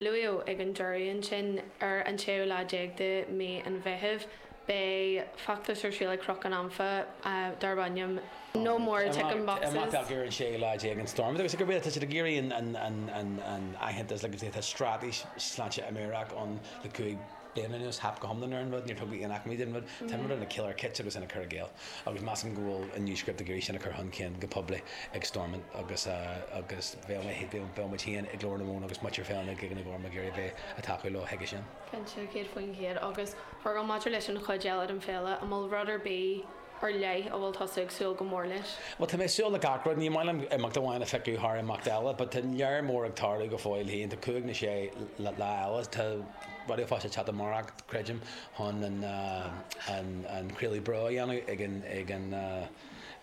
Luadh ag an deireadh ansin, ar an tséú lá déag de mhí an Mheithimh, beidh feachtas ar siúl ag Cnoc an Anfa darb ainm 'No more ticking boxes'. Ar an séú lá déag in Stormont agus gurb é tá siad ag iarraidh an aitheantas agus tá straitéis sláinte mheabhrach ann le cúig bliana anuas theip go hiomlán ar an rud, níor tugadh aon acmhainní don rud, tá an rud ina chiolar chiot agus ina cur i gcéill, agus measaim go bhfuil an New Script ag iarraidh sin a chur chun cinn go poiblí ag Stormont agus agus bheadh mé bheadh muid féin ag Glór na Móna agus muintir Fhéile na gCloigíní Gorma ag iarraidh a bheith ag tacú leo chuige sin. Cinnte, céad faoin gcéad, agus Feargal maidir leis an chuid eile den Féile, an bhfuil rud ar bith ar leith a bhfuil tusa ag súil go mór leis? Bhuel, tá mé ag súil le gach rud. Ní maith liom imeacht amháin a phiocadh thar imeacht eile, but tá lear mór ag tarlú go fóill féin. Tá cúig nó sé lá eile, tá Raidió Fáilte teacht amárach, creidim, chun an craoladh beo a dhéanamh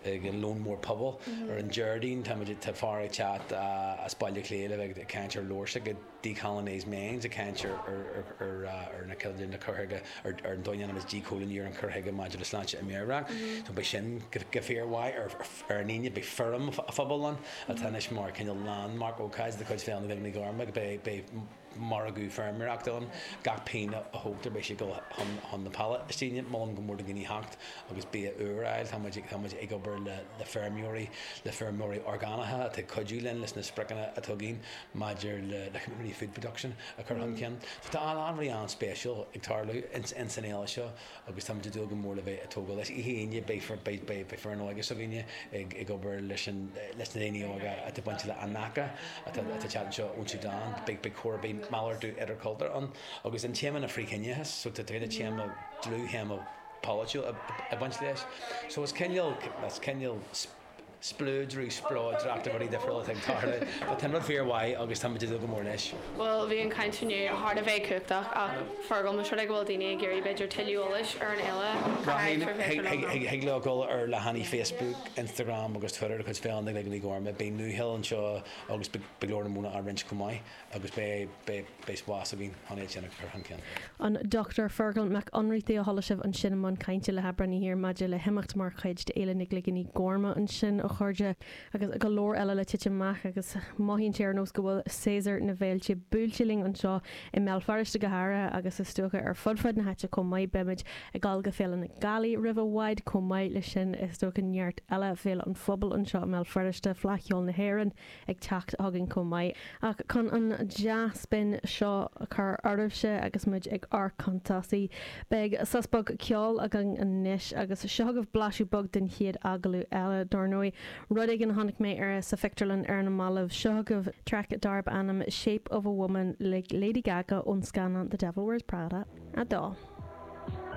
ag an Lón Mór Pobail. Ar an Déardaoin, tá fear ag teacht as Baile Átha Cliath le bheith ag caint ar leabhair. 'Decolonised Minds', ag caint ar na coilíní, na cur chuige, ar an dá dhéanamh is díchoilíniú ar an chur chuige maidir le sláinte mheabhrach. Beidh sin go fíormhaith ar an Aoine. Beidh Feirm an Phobail ann atá anois mar cineál landmark, ócáid de chuid Fhéile na gCloigíní Gorma. Beidh margadh feirmeoireachta ann. Gach pingin a thógtar beidh sé ag dul chun na Palaistíne. Molaim go mór do dhaoine theacht agus bia úr a fháil. Tá muid ag obair le feirmeoirí, le feirmeoirí orgánacha atá ag cuidiú linn leis na spriocanna atá againn. maidir le community food production a chur chun cinn. So tá a lán rudaí an-spéisiúil ag tarlú ins an fhéile seo agus táimid ag dúil go mór le bheith ag tógáil leis. Oíche Aoine beidh foireann óige s'againne ag obair leis na daoine óga atá bainte le Anaka atá ag teacht anseo ón Sudan. Beidh cór, beidh malartú idirchultúir ann agus an téama ná frith-chiníochas so tá cúpla téama, dlúth-théama polaitiúil ag baint leis. So is cineál, is cineál. spleodar, spleodracht de rudaí difriúla atá ag tarlú. Tá tinreamh fíor mhaith agus táimid ag dúil go mór leis. Bhuel, bhí an chaint inniu thar a bheith cumhachtach ach Feargal, más rud é go bhfuil daoine ag iarraidh b'fhéidir tuilleadh eolais ar an fhéile, cad é ar féidir leo a dhéanamh? Thig leo dul ar leathanaigh Facebook, Instagram agus Twitter de chuid Féile na gCloigíní Gorma. Beidh nuacheol anseo agus beidh Glór na Móna á roinnt chomh maith. agus beidh bés bhás a bhí chun é a chinneadh ar chun cinn. An Dr Feargal Mac Ionnrachtaigh a chuala sibh ansin i mbun cainte le hAibreánaí thiar maidir le himeacht mar chuid d'Fhéile na gCloigíní Gorma ansin, a chairde, agus go leor eile le titim amach agus mothaíonn sé ar nós go bhfuil séasúr na bhféilte buailte linn anseo i mBéal Feirste go háirithe agus is dócha ar fud fad na háite chomh maith. Beimid ag dul go Féile na Gealaí roimh i bhfad chomh maith leis sin, is dócha neart eile Féile an Phobail anseo i mBéal Feirste, Fleadh Cheoil na hÉireann, ag teacht chugainn chomh maith, ach chun an dea-spin seo a chur orainne agus muid ag ár gcuntasaí, beidh sos beag ceoil againn anois, agus seo agaibh blaiseadh beag den chéad agallamh eile, dár ndóigh, rud éigin a chonaic mé ar sa phictiúrlann ar na mallaibh, seo agaibh traic darb ainm 'Shape of a Woman' le Lady Gaga ón scannán The Devil Wears Prada 2.